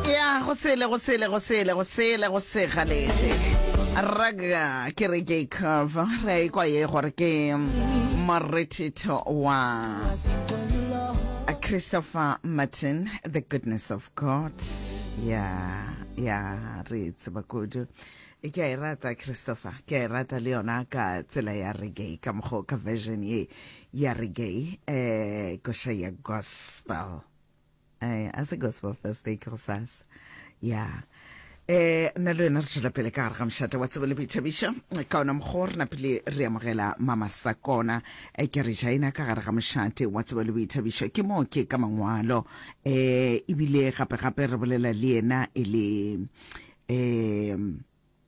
ya go sele go sele go sele go sele go se galetše raga ke re ke cover re a ikwa ye gore ke morethetho wa christopher martin the goodness of god ya ya re tseba kudu ke a e rata christopher ke a e rata le yona ka tsela ya reggae ka mokgwa ka version ye ya reggae um koša ya gospel eh, a se gospel thursday ke go sasa ya eh nna le wena re tšwela pele ka gare ga mošate wa tsebo le boithabišo ka ona mokgwa re napile re amogela mama sakona e ke re jaina ka gare ga mošate wa tsebo le boithabišo ke moo ke ka mangwalo eh ebile gape-gape re bolela le yena e le um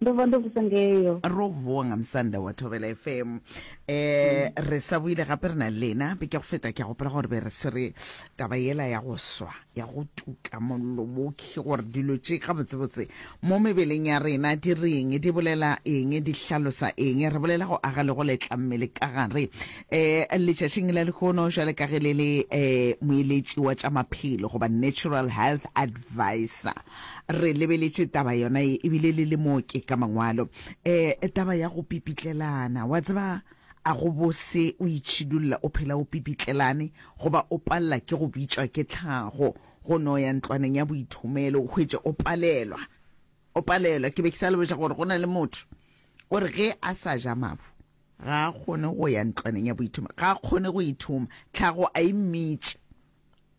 ndo vha ndo vusa ngeyo ro vuwa nga musanda wa thobela fm um eh, mm. re sa buile gape re na le lena be ke go feta ke a gopela gore be re swere taba yela ya go swa ya go tuka mollo mokhi gore dilo tše gabotsebotse mo mebeleng ya rena di reng di bolela eng di hlalosa eng re bolela go aga le go letla mmele ka gare um letšatšing la lekgono jale ka ge le le um moeletši wa tša maphelo goba natural health advisor Re lebeletše taba yona ye, e bile le le mo ke ka mangwalo. Eh, taba ya go pipitlelana. Wa tseba, a go bose o itšhidulla o phela o pipitlelane, goba o palela ke go bitšwa ke tlhago, go no ya ntlwaneng ya boithomelo, o hwetše o palelwa, o palelwa. Ke be ke sa le boša gore go na le motho o re ge a sa ja mabu, ga a kgone go ya ntlwaneng ya boithomelo, ga a kgone go ithoma, tlhago a e mmitše.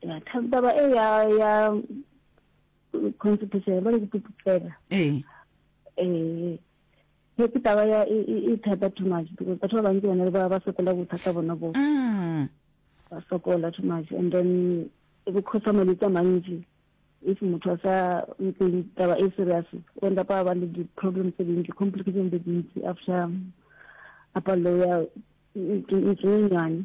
ya taba e ya ya constitution ba le dipupela eh eh ke ke taba ya e e, e thata too much because batho ba bantsi bone ba ba sokola bothata bona bo mm. ba sokola too much and then e go khosa malwetse a mantsi if motho a sa ntseng taba e serious o enda pa ba le di-problem tse dintsi complication tse dintsi after a palelo ya ntsenyenyane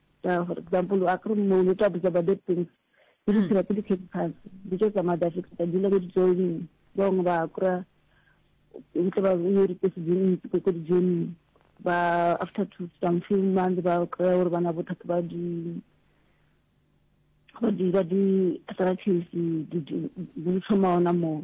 Ka for example, a kere mo ne tla botsa ba that things. Ke di tshela ke di khetsi phasi. Di tlo tsamaya da fetsa ka dula ko di joining. Ba bangwe ba kura ntle ba yo di tse di ntse ko di joining. Ba after two some few months ba kura gore bana bothata ba di ba di ba di arthritis di di di tlhoma ona moo.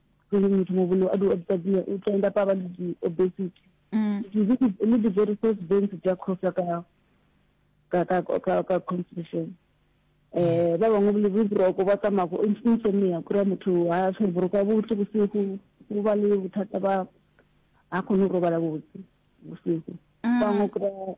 e leng motho mo bone a di obsabile o tla enda pa ba le di obesity mm. le di very first bents tsa khosa ka ka ka ka ka constitution eh ba bangwe le bo broko ba tsamaya go insomnia go ra motho ha se broko a botse go se go go ba le bothata ba a kgone go robala botse go se go mm. ba ngo go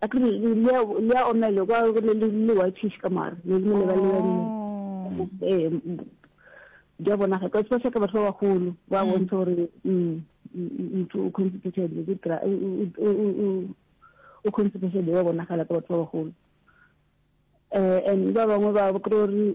a ke re le ya le ya omele kwa go le le le whitish ka mara le le le ba le oh. eh di a bona ga ka tswa ka batho ba bagolo ba mm. bontsha gore mm, mm, motho o constipated le tra o constipated ba bona ga ka batho ba bagolo eh and ba bangwe ba kro re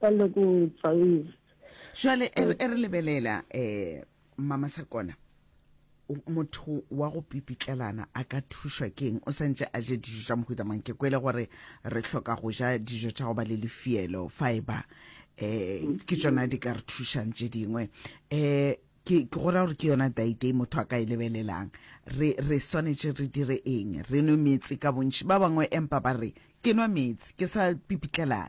Ba le go tsaiz. Jwale e re lebelela eh mama Sakona motho wa go pipitlelana a ka thušwa keng o santse a je dijo tša mohuta mang ke kwele gore re hloka go ja dijo tša go ba le lefielo fiber um ke tsona di ka re thušang tše dingwe um ke go ra gore ke yona daite e motho a ka e lebelelang re re swanetše re dire eng re nwe meetse ka bontši ba bangwe empa ba re ke nwa meetse ke sa pipitlelana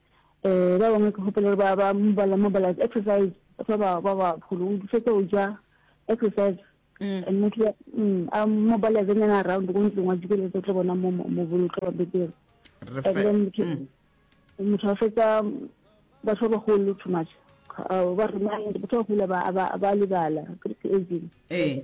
Eh, ba bangwe ke hopela ba ba mobala mobala exercise fa ba ba ba pholo o fetsa o ja exercise mm. and motho mm, a mobala ze nyana around go ntlong wa dikele tse tlo bona mo mo bolo tlo ba betere and then motho mm. a fetsa ba tlo ba hole too much ba remind ba tlo hula ba ba libala ke aging eh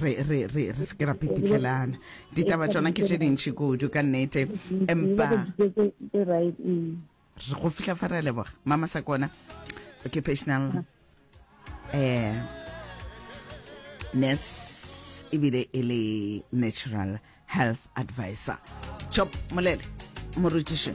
re re re re se ke ra pipitlhelana ditaba tsona ke tše dintšhi kudu ka nnete empa go fihla fa re leboga mama sa kona occupational eh nurse ebile e le natural health advisor chop molele morutiši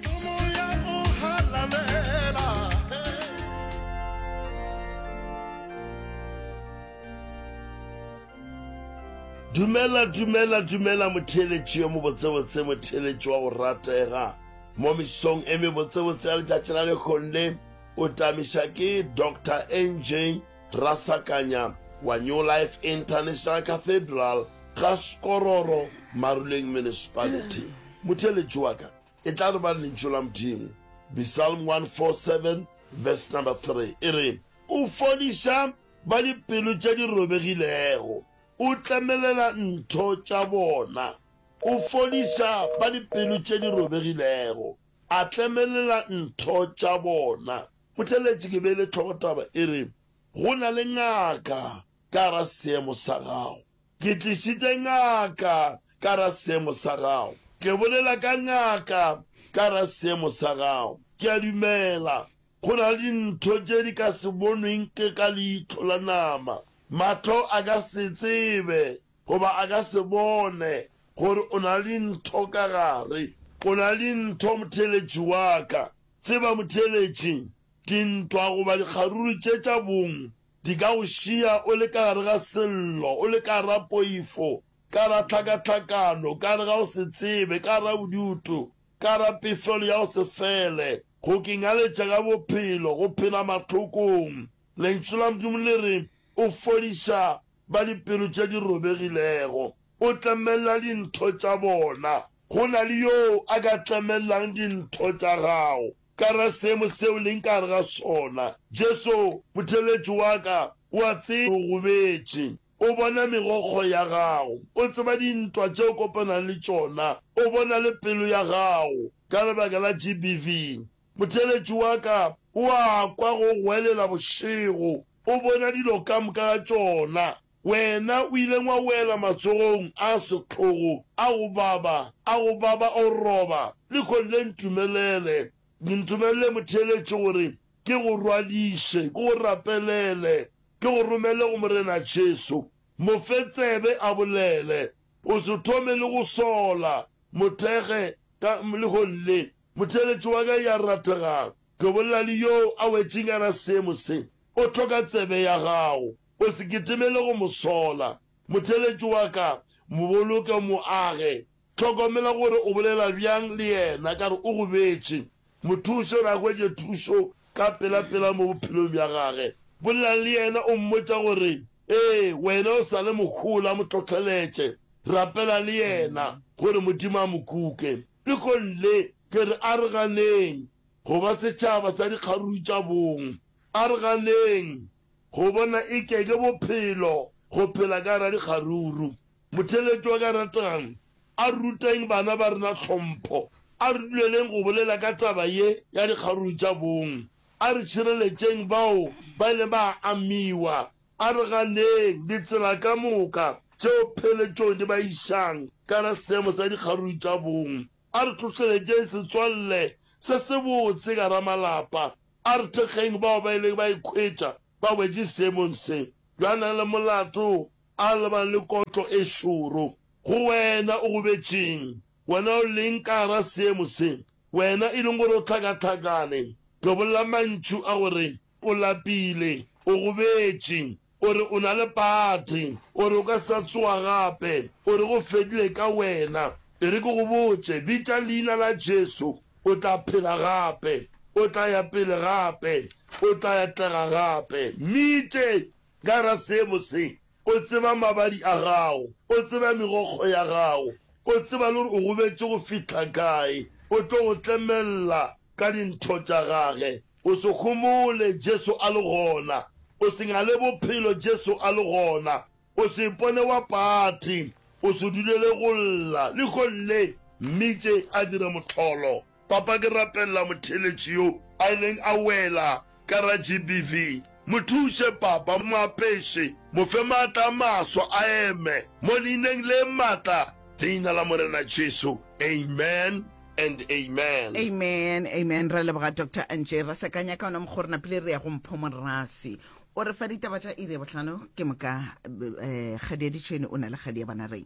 dumela dumela dumela motheeletši yo mobotsebotse motheeletši wa go ratega mo mesong e mebotsebotse ya letšatši la lekgonle o tamiša ke dr nj Rasakanya wa New Life International Cathedral, ga Skororo, Maruleng Municipality. Motheeletši wa ka e tla re ba Lentšu la Modimo. Bsalm 147 verse number 3 e re, O fodiša ba dipelo tša di robegilego, o tlemelela ntho tša bona. O fodiša ba dipelo tše di robegilego, a tlemelela ntho tša bona. Mothelletši ke beile tlhogo taba e re go na le ngaka ka gara seemo sa gago. Ke tlišitše ngaka ka gara seemo sa gago. Ke bolela ka ngaka ka gara seemo sa gago. Ke a dumela go na le dintho tše di ka se bonweng ke ka leihlo la nama. Mahlo a ka se tsebe goba a ka se bone gore o na le dintho ka gare. O na le dintho, mothelletši wa ka. Tseba motheeletši, dintwa goba dikgaruru tše tša bong di ka go šiya o le ka gare ga sello, o le ka gare ga poifo, ka gare ga tlhakatlhakano, ka gare ga go se tsebe, ka gare ga bodutu, ka gare ga pefelo ya go se fele, go kengaletša ka bophelo, go phela mahlokong. Lentšu la Modimo le re, O fodiša ba dipelo tše di robegilego, o tlemella dintho tša bona. Go na le yo a ka tlemellang dintho tša gago? Ka ra seemo seo leng ka gare ga sona. Jesu, Motheeletši wa ka, o a tseba o gobetše. O bona megokgo ya gago. O tseba dintwa tše o kopanang le tšona. O bona le pelo ya gago ka lebaka la GBV. Motheeletši wa ka o a kwa go goelela bošego, o bona dilo ka moka ga tšona. Wena o ileng wa wela matsogong a sehlogo a go baba, a go baba o roba. Lehono le ntumelele, ntumelele motheeletši gore ke go rwadiše, ke go rapelele, ke go romele go Morena Jesu. Mo fe tsebe a bolele. O se thome le go sola, mo thekge ka lehono le. Motheeletši wa ka ya rategago, Tobollani yoo a wetšegana seemo se, o hloka tsebe ya gago. O se kitimele go mo sola. Motheeletši wa ka, mo boloke, mo age. Hlokomela gore o bolela bjang le yena ka re o go betše. Mo thuše gore a hwetše thušo ka pelapela mo bophelong bja gage. Bolela le yena o mmotša gore, Ee, wena o sa le mohola. Mo hlohleletše. Rapela le yena gore Modimo a mo kuke. Pegong le, ke re a re ganeng go ba setšhaba sa dikgaruru tša bong. A re ganeng go bona e ke ke bophelo go phela ka gare ga dikgaruru. Motheeletši wa ka ratang, a re ruteng bana ba rena tlhompho. A re duleleng go bolela ka taba ye ya dikgaruru tša bong. A re tšhireletšeng bao ba ileng ba amiwa A re ganeng ditsela ka moka tšeo pheletšong di ba išang ka gare seemo sa dikgaruru tša bong. A re tlohleletšeng setswalle se sebotse ka gare malapa. A re thekgeng bao ba ileng ba ikhwetša ba wetše seemong se bjo a nang le molato a lebang le kotlo e šoro. Go wena o gobetšeng, wena o leng ka gare seemo se, wena e leng gore o hlakahlakane, tobolla mantšu a go re O lapile, o gobetše, o re o na le pate, o re o ka se sa tsoga gape, o re go fedile ka wena. E re ke go botše, bitša Leina la Jesu, o tla phela gape, o tla ya pele gape, o tla atlega gape. Mmitše ka gare ga seemo se. O tseba mabadi a gago. O tseba megokgo ya gago. O tseba le gore o gobetše go fihla kae. O tlo go tlemelela ka dintho tša Gage. O se homole Jesu a le gona. O se ngale Bophelo Jesu a le gona. O se ipone wa pati. O se dulele go lla. Lehono le, Mmitše a dire mohlolo. Papa, ke rapelela motheeletši yo a ileng a wela ka ra GBV. Mo thuše, Papa. Mo apeše, mo fe maatla a maswa a eme, mo Leineng le matla, Leina la Morena Jesu. Amen and amen. Amen, amen. Re a leboga, Doctor Antje. Ra sekanya ka ona mokgwa o re napile re ya go Mpho Moraswi. O re fa ditaba tša iri ya bohlano. Ke moka, eh, kgadi ya ditšhwene o na le kgadi ya banareng.